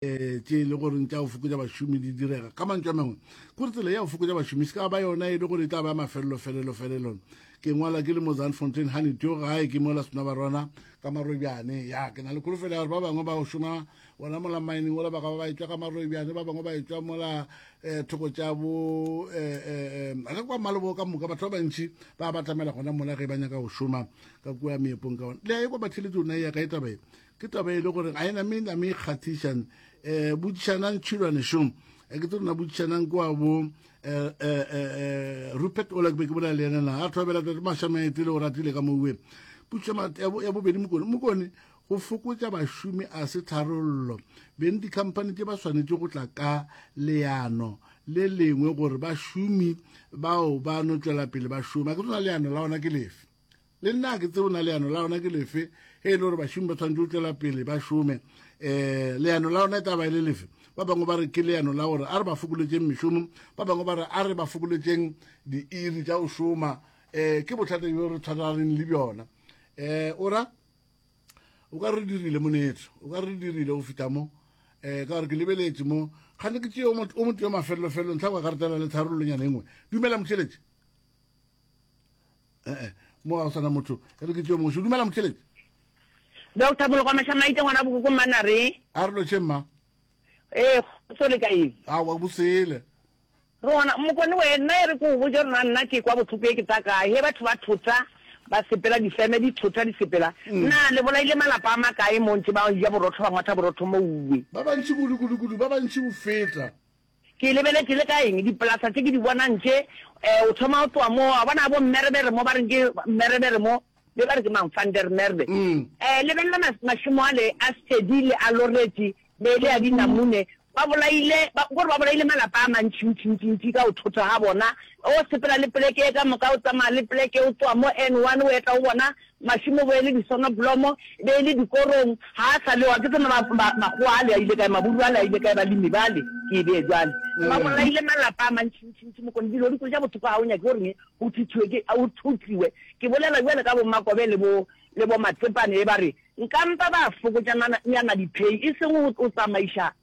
um tše e le goreng tša go fokotša bašomi di direga ka mantšwa mangwe kore tsela ya go fokotša bašomi se ka ba yona e le gore e tla ba mafelelo felelo felelon ke ngwala ke le mo zanfontain gane teo gae ke mola sona ba rona ka marobjane ya ke na le kholofelo ya gore ba bangwe ba go šoma gona mola mining ola ba ka ba ba etswa ka marobjane ba bangwe ba etswa mola um thoko tša bo um ga kwa malebo ka moka batho ba bantšhi ba batamela gona mola ge ba nyaka go šoma ka kua meepong ka ona le ya e kwa batheletso ona ya ka e tabae ke taba e le gore ga ena me name e kgathišan um botšišanang tšhilwane šong eh, ke tse rona botšišanang ke wa bo Eh, eh, eh, rupert ola ke be ke bolela le ena na a thobela tate mašamaete le o ratile ka moue puso ya bobedi mokone mokone go fokotša bašomi a se tharollo beng dikhamphani tše ba swanetše go tla ka leano le lengwe gore bašomi bao ba no tšwela pele ba šoma ke tsona leano la ona ke lefe le nna ke tseo na leano la ona ke lefe ge e le gore bašomi ba tshwanetse go tšwela pele ba šome um leano la ona e taba e le lefe ba bangwe ba re ke leano la gore a re ba fokoletseng mešomo ba bangwe ba re a re ba fokoletseng diiri tša go šoma um ke bothata bjo re tshwaraganeng le bjona um o ra o ka re dirile monetso o ka re dirile go fita mo um ka gore ke lebeletse mo kgane ke tseo o motho yo mafelelofelo ntlha kwa karetela le tharololonyana engwe dumela motšheletše ee mo ga o sana motho e re ke teo mongwe se dumela motheletši doctor bolokwa mašamaite ngwana bokoko mmana re a re loše mma ee so le kaeng a wa bosele rona mokone wena e re ko o boje rona nna ke kwa botlhoko e ke tsa kae he batho ba thota ba sepela difeme di thota di sepela mm. na le bolaile malapa a makae mo ntse ba ja borotho ba ngwatha borotho mo uwe ba bantši kudu kudu kudu ba bantši go feta Ke lebeletše le ka eng? Dipolasa tše ke di bonang tše. O thoma o tloga moo, wa bona ga bo Mmerebere mo, ba reng ke Mmerebere mo, be ba re ke mang, Van der Merwe. Lebelela mašemo ale a Steady le a Loretti be le a dinamune, ba bolaile, ba, kore ba bolaile malapa a mantši ntši ntši ntši ka go thotha ga bona. O sepela le poleke e ka moka, o tsamaya le poleke, o tloga mo N one o eta go bona, Mašemo bo e le disonoblomo, e be e le dikorong, ga a sa le wa. Ke tsebe ma, ma, makgowa ale a ile kae, maburu ale a ile kae, balemi bale, ke e bee bjale. Ba bolaile malapa a mantšintšintši, mokone, dilo di kwetša bothoko, ga o nyake gore ne, go thithiwe ke, a, go thotliwe. Ke bolela bjale ka bo-Makobe le bo, le bo-Matsepane, e ba re, nkampa ba fokotša nana, nyana diphei, e seng go, go tsamaiša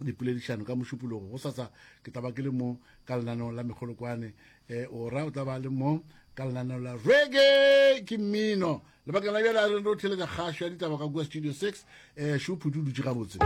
dipoledišano ka mošupologo go sasa ke tla ba ke le mo ka lenaneo la mekgolokwane um ora o tla ba le mo ka lenaneo la rege ke mmino lebakeng la bjale a re re o theletša kgašo ya ditaba ka kua studio six um šophuti o dutše gabotse